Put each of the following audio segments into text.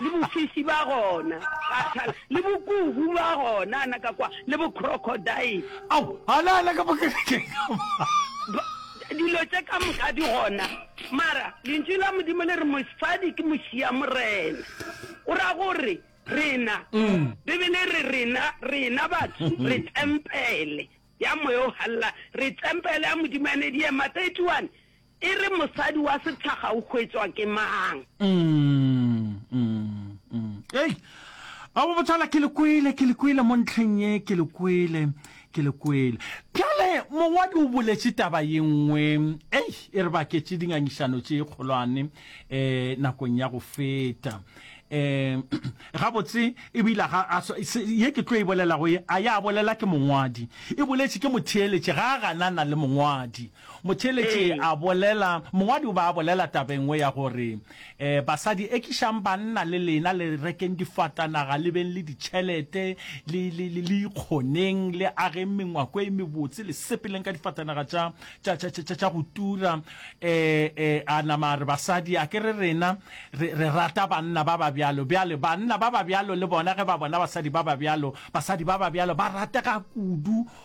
le bofisi ba gona gathal le bokuhu ba gona ana ka kwa le bo crocodile ao ana ana ka bokerekeng dilo tse ka moka di gona mara lentši la modimo le re mosadi ke mosia morena o ra gore rena mm. bibele re rena rena batho mm-hmm. re tempele ya moya o galela re tempele ya modimo ene di ema 31 E re mosadi wa setlhaga o hwetšwa ke mang? Ei, abo botsala ke le kwele, ke le kwele mo ntlheng ye, ke le kwele, ke le kwele. Bjale mongwadi o boletše taba ye nngwe, ei, e re baketše dingangišano tše kgolwane um nakong ya go feta. Um gabotse e bile ga a swa, se, ye ke tlo e bolelago ye a ya bolela ke mongwadi, e boletše ke motheeletše, ga a ganana le mongwadi. Motheeletši a bolela, Mongwadi o be a bolela taba e nngwe ya gore, um Basadi, ekišang banna le lena le rekeng difatanaga, le beng le ditšhelete, le, le, le, le ikgoneng, le ageng mengwako e mebotse, le sepeleng ka difatanaga tša, tša, tša, tša, tša go tura. Um, um a nama a re, Basadi, a ke re rena re, re rata banna ba ba bjalo. Bjale, banna ba ba bjalo le bona ge ba bona basadi ba ba bjalo, basadi ba ba bjalo ba ratega kudu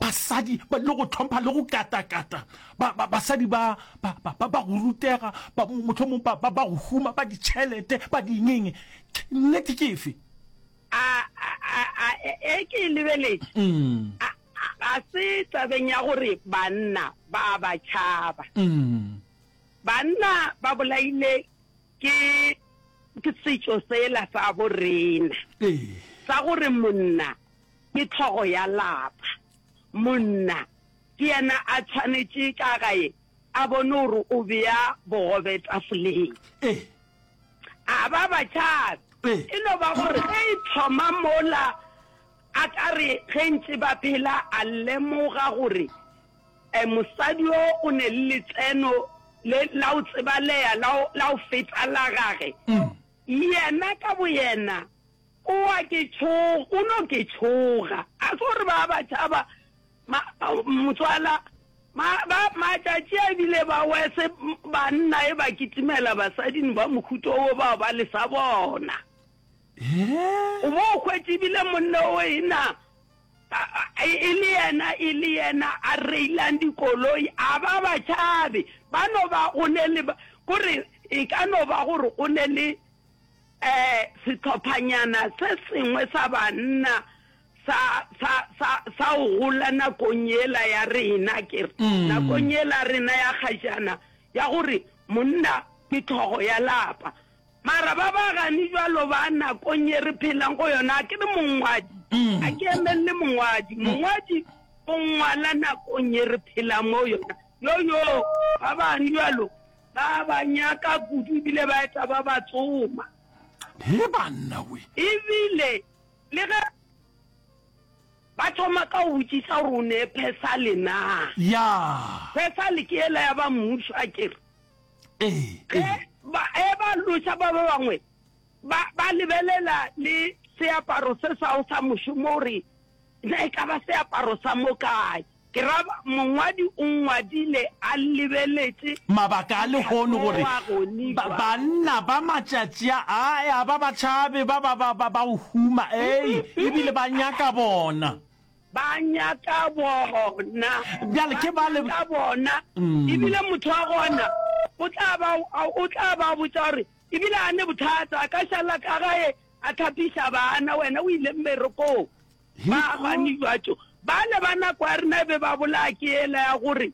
Basadi ba dilo go tlhompha le go katakata. Ba, ba, basadi ba, ba, ba, ba, ba go rutega, ba, motlho mong ba, ba, ba go huma, ba ditšhelete, ba dingenge. Nnete ke efe? A, a, a, a, e, e ke e lebeletše. Mm. A, a, ga se tabeng ya gore banna ba a ba tšhaba. Mm. Banna ba bolaile ke, ke setšo sela sa bo rena. Ee. Sa gore monna ke hlogo ya lapa. Monna ke yena a tshwanetše ka gae a bone gore o bea bogobe tafoleng. Ee. A ba batšhana. Ee. E no ba gore ge e thoma mola a ka re ge ntše ba phela a lemoga gore um mosadi o o ne le letseno le la o tsebaleya la o feta la gage mm. yena ka boyena O a ke tšhoga, o no ke tšhoga. Ga se gore ba ba tšhaba, ma, motswala, ma, ba, matšatši a bile ba wese, banna e ba kitimela basadin ba mohuto wo bao ba le sa bona. O bo o hwetše bile monne o e na, a, a, e le yena, e le yena a reilang dikoloi, a ba ba tšhabe. Ba no ba o ne le, ko re, e ka no ba gore o ne le, Ee, sehlophanyana se sengwe sa banna sa, sa, sa, sa o gola nakong yela ya rena, ke re, mm. nakong yela rena ya gajana, ya gore monna ke tlhogo ya lapa. Mara ba ba gani jalo ba nakong ye re phelang go yona, a ke re mongwadi, mm. a ke emelele mongwadi. Mm. Mongwadi o ngwala nakong ye re phelang mo yona. Yo, yo, ba bani jalo, Ba ba nyaka kudu ebile ba eta ba ba tsoma. He banna we. Ebile le ge ba thoma ka go botsisa gore o ne phesale na. Ya. Phesale ke ela ya ba mmuso a kere. Ee. Ge ba e ba loša ba ba bangwe ba ba lebelela le seaparo se sa o sa mošomo gore ne e ka ba seaparo sa mo kae. Ke ra ba mongwadi o ngwadile a lebeletše. Mabaka a lehono gore ba, banna ba matšatši a, a, a ba ba tšhabe, ba, ba, ba, ba, ba o huma, ei, ebile ba nyaka bona. Ba nyaka bona. Bjale ke ba le. Ba nyaka bona. Ebile motho wa gona o tla ba, o tla ba botša gore ebile a ne bothata, a ka šala ka gae a tlhapiša bana, wena o ile mmerekong. Ba bani batho bale ba nako ya rena e be ba bolaya ke ela ya gore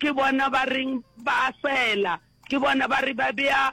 ke bona ba reng ba fela ke bona ba re ba beya